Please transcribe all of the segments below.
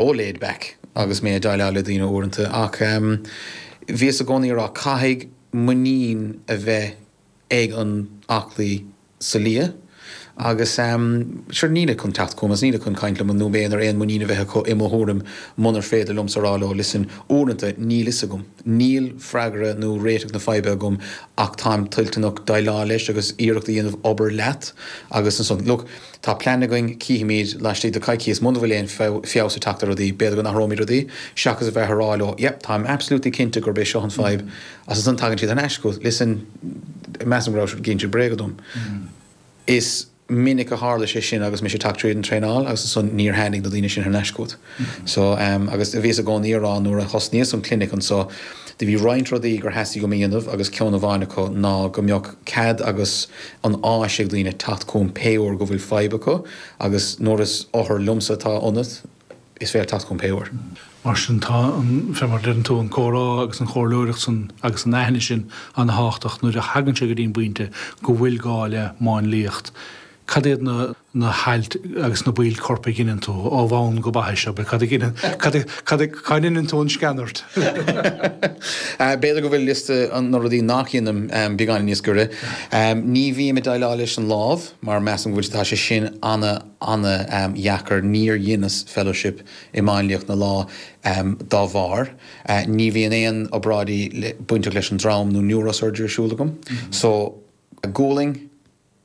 chomh laid back agus mé ag déileáil le daoine uaireanta, ach bhíos i gcónaí ag rá, caithfidh muinín a bheith ag an aclaí sa lia, agus sure, níl siad chun teacht chugam agus níl siad chun caint liom nó in ann aon muinín a bheith acu i mo thuairim munar féidir liomsa a rá leo, listen, uaireanta, níl fhios agam, níl freagra nó réiteach na faidhbe agam ach táim toilteanach déileáil leis agus iarracht a dhéanamh obair leat agus ansan, look. Tá plean againn, cífimíd, laistigh de coicíos, muna bhfuil aon feabhas ag teacht ar rudaí, b'fhéidir go n-athróimid rudaí, seachas a bheith ag rá, oh, yep, táim absolutely cinnte gurb é seo an fadhb, agus ansan tagann siad thar n-ais chugat, listen, measaim go raibh tú ag insint bréaga dom. Is minic a tharla sé sin agus mise ag teacht tríd an traenáil agus ansan níor tháinig na daoine sin thar n-ais chugat. So, agus bhíos i gcónaí a rá nuair a thosnaíos an clinic anseo, do bhí roinnt rudaí gur theastaigh uaim a dhéanamh agus ceann amháin acu ná go mbeadh cead agus an áis ag daoine teacht chugam pé uair go bhfuil fadhb acu agus nuair is othar liomsa atá ionat, is féidir teacht chugam pé uair. Mar sin, tá an, fé mar a deireann tú, an comhrá agus an chomhairleoireacht san agus an aithne sin ana-thábhachtach nuair a thagann sé go dtí an bpointe go bhfuil gá le máinliacht. Cad iad na hailt agus na baill coirp a dheineann tú, ó bhonn go baithis, abair? Cad a dheineann, cad, cad a, cá ndeineann tú an sceanairt? B'fhéidir go bhfuil liosta na rudaí nach dheinim beagáinín níos giorra. Ní bhím ag déileáil leis an lámh mar measaim go bhfuil, tá sé sin ana, ana dheacair. Níor dheineas fellowship i máinliacht na lámh dá bharr. Ní bhíonn aon obráidí bainteach leis an drom nó neurosurgery ar siúl agam. So, gualainn.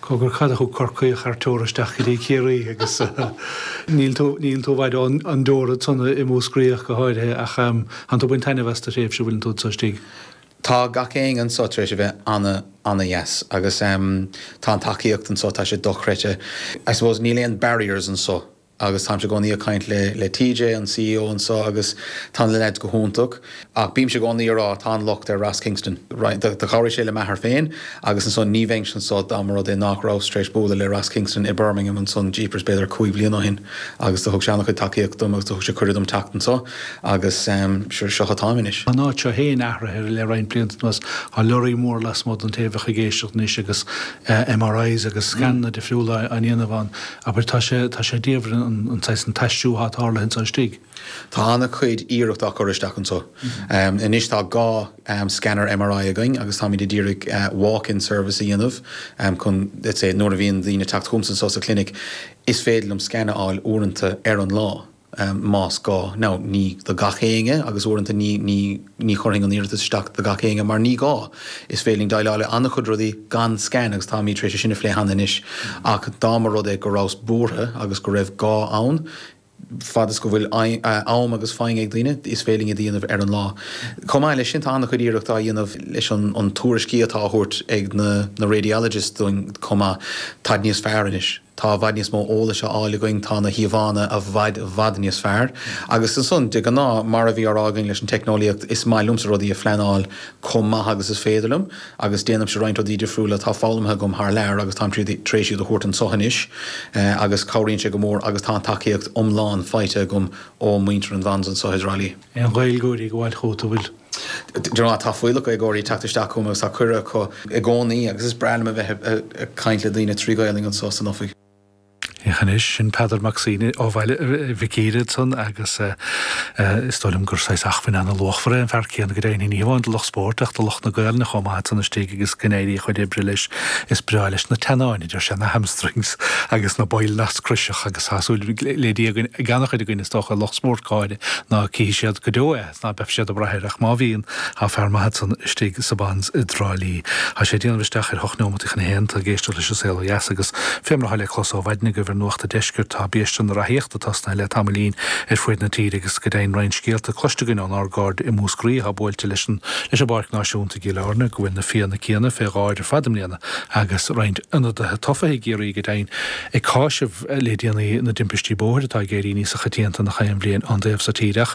Cogar, cad a thug Corcaíoch ar tóir isteach go dtí Ciarraí agus níl tú, níl tú i bhfad ó an teorainn, tánn tú id Mhúscraíoch go háirithe ach tánn tú ag baint taitneamh as do thréimhse ó bhfuil tú anso istigh. Tá gach aon anso tar éis a bheith ana, ana dheas agus tá an tacaíocht anso, tá sé dochreidte. I suppose níl aon barriers anso. agus táimse i gcónaí ag caint le TJ, an CEO anseo, agus tá na leaids go hiontach, ach bímse i gcónaí ag rá, tá an locht ar Ross Kingston. Do chabhraigh sé le m'athair féin, agus ansan, ní bheinnse anseo dá mba rud é nách rabhas tar éis bualadh le Ross Kingston i mBirmingham ansan, jeepers, b'fhéidir cúig bhliana ó shin, agus do thug sé ana-chuid tacaíocht dom, agus do thug sé cuireadh dom teacht anseo, agus seo atáim anois. Tá an áit seo féin athraithe le roinnt blianta anuas, tá lorraí mór lasmuigh den taobh a bheadh ag éisteacht anois, agus MRIs agus scananna difriúla á ndéanamh ann. Abair, tá sé, tá sé diamhair an saghas, an t-aistriú atá tarlaithe anseo istigh. Tá an-chuid iarracht á cur isteach anseo. Anois tá dhá scanner MRI againn agus táimid a d'iarraidh walk-in service a dhéanamh chun, let's say, nuair a bhíonn daoine ag teacht chugam anseo sa chlinic, is féidir liom scan a fháil uaireanta ar an lá. em, más gá. Now, ní do gach éinne, agus uaireanta ní, ní, ní chuirfinn an iarratas isteach do gach éinne mar ní gá. Is féidir linn déileáil le an-chuid rudaí gan scan agus táimid tar éis é sin a phlé cheana anois ach dá mba rud é go rabhas buartha agus go raibh gá ann, fad is go bhfuil eh, am agus foighne ag daoine, is féidir linn iad a dhéanamh ar an lá. Chomh maith leis sin, tá an-chuid iarracht á dhéanamh leis an, an tuairiscí atá á thabhairt ag na, na radiologists dúinn chomh maith, táid níos fearr anois. Tá i bhfad níos mó eolais á fháil againn, tá na híomhánna i bhfad, bhfad níos fearr. Agus ansan, de ghnáth, mar a bhí á rá againn leis an teicneolaíocht, is maith liomsa rudaí a phleanáil chomh maith agus is féidir liom, agus déanaimse roinnt rudaí difriúla atá foghlamtha agam thar lear agus táim tar éis iad a thabhairt anseo anois agus cabhraíonn sé go mór agus tá an tacaíocht iomlán faighte agam ó mhuintir an Bons anseo i dTrá Lí. aon Ghaeilgeoirí ag gabháil chugat, an bhfuil? de ghnáth tá fuíollach Gaeilgeoirí ag teacht isteach chugam agus tá cuireadh acu i gcónaí agus is breá liom a bheith ag caint le daoine trí Ghaolainn anseo san oifig. Féach anois, sin Peadar Mac Suibhne ó Bhaile Mhic Íre ansan agus is dóigh liom gur saghas achmhainn ana-luachmhar é an fear céanna go deimhin, ní hamháin do lucht spóirt ach do lucht na Gaolainne chomh maith ansan istigh agus go n-éirí a chuid oibre leis. Is breá leis na teannáin, a deir sé, na hamstrings agus na baill nasc chroiseacha agus tá súil le Dia againn, ag ana-chuid againn, is dócha, lucht spóirt, go háirithe. Ná cífidh siad go deo é, 's ná beidh siad ag brath air, ach má bhíonn, thá fear maith acu ansan istigh sa Bons i dTrá Lí. Thá sé ag déanamh isteach ar hocht neomataí chun a haon, tá ag éisteacht leis an Saol ó Dheas, agus fé mar athá le clos ó mhaidin agaibh ar Nuacht a' Deiscirt, tá biaiste na reathaíochta tosnaithe le tamaillín ar fuaid na tíre, agus go deimhin roinnt scéalta cloiste againn ón ár gcairde i Múscraí athá buailte leis an leis an bPáirc Náisiúnta i gCill Áirne, go bhfuil na fianna céanna fé dháir ar fad i mbliana, agus roinnt ionadaithe tofa i gCiarraí, go deimhin, ag cáiseamh. le déanaí na dtimpistí bóthair atá ag éirí níosa choitianta nach aon bhliain an taobh so tíre ach